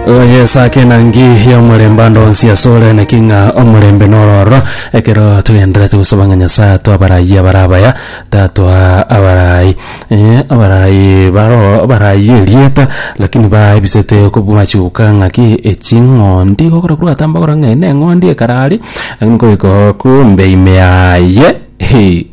oyesake enangi y'omorembe ande onsi asore naki ng'a omorembe nororo ekero twegenderete gosaba ng'a nyasaye atwe abarai abare abaya tatwa abarai eh, abarai baro abarai erieta lakini baebisete kobwachuka ng'aki eching'ondi gokora korwa gatamba okora ng'a eye neng'ondi ekara aria lakini nkoika oo kumbe ime yaye hee.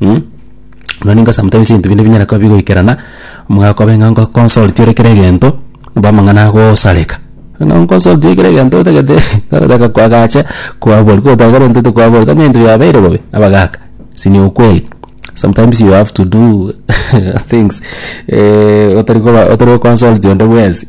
Mh, mani inga sometimes ebinto binde binyare koba bigoikerana, mogakoba ng'a ngoconsulti ore kera egento, omba amang'ana agosareka, ng'a onconsulti ore kera egento otagete otagete kwagacha kwabori kotagete egento tokwabori tari ebinto biabeire bobe, abagaka si ni ukweli, sometimes you have to do things otari koba otari goconsulti onde bwensi.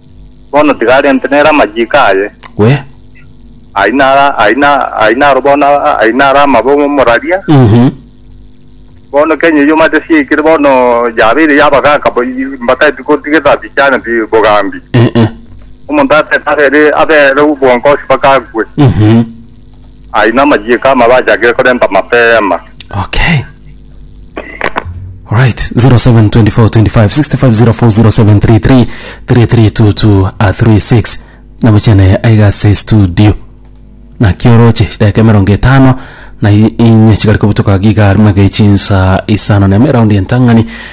Bono tiga arente nere amachiiko aye. We. Ayio naro, ayio na, ayio naro bono, a- ayio naro amabe omoraria. Mhm. Bono Kenya eyio omanyete siaikire bono yabeire yabagaaka bo- mbataeti gotigeta bichaneti bogambi. Eh, eh. Omonto atete abere, abere obwongosi mpaka akwe. Mhm. Ayio namachiiko amabe achakire korenta mapema. Okay. Right, 07242565040733 3322 a 36 namochene aiga ase studio naki oroche chidakika emerongo etano na i- inye chigare kobutoka giga arimo age chinsa isano na ime eraundi entang'ani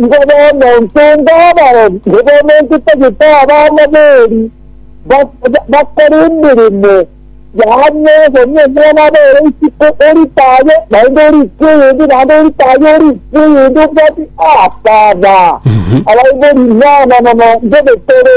Ngoba omonto onde abarore, ngoba omonto otagete abana b'eri bakore emeremo y'ang'e, gose omwana abere isiko orite aye, naende orikwe oyonde, naende orite aye orikwe oyonde, obwate, Aaba, Aaba, abaibori, inana, nono, ndebekere.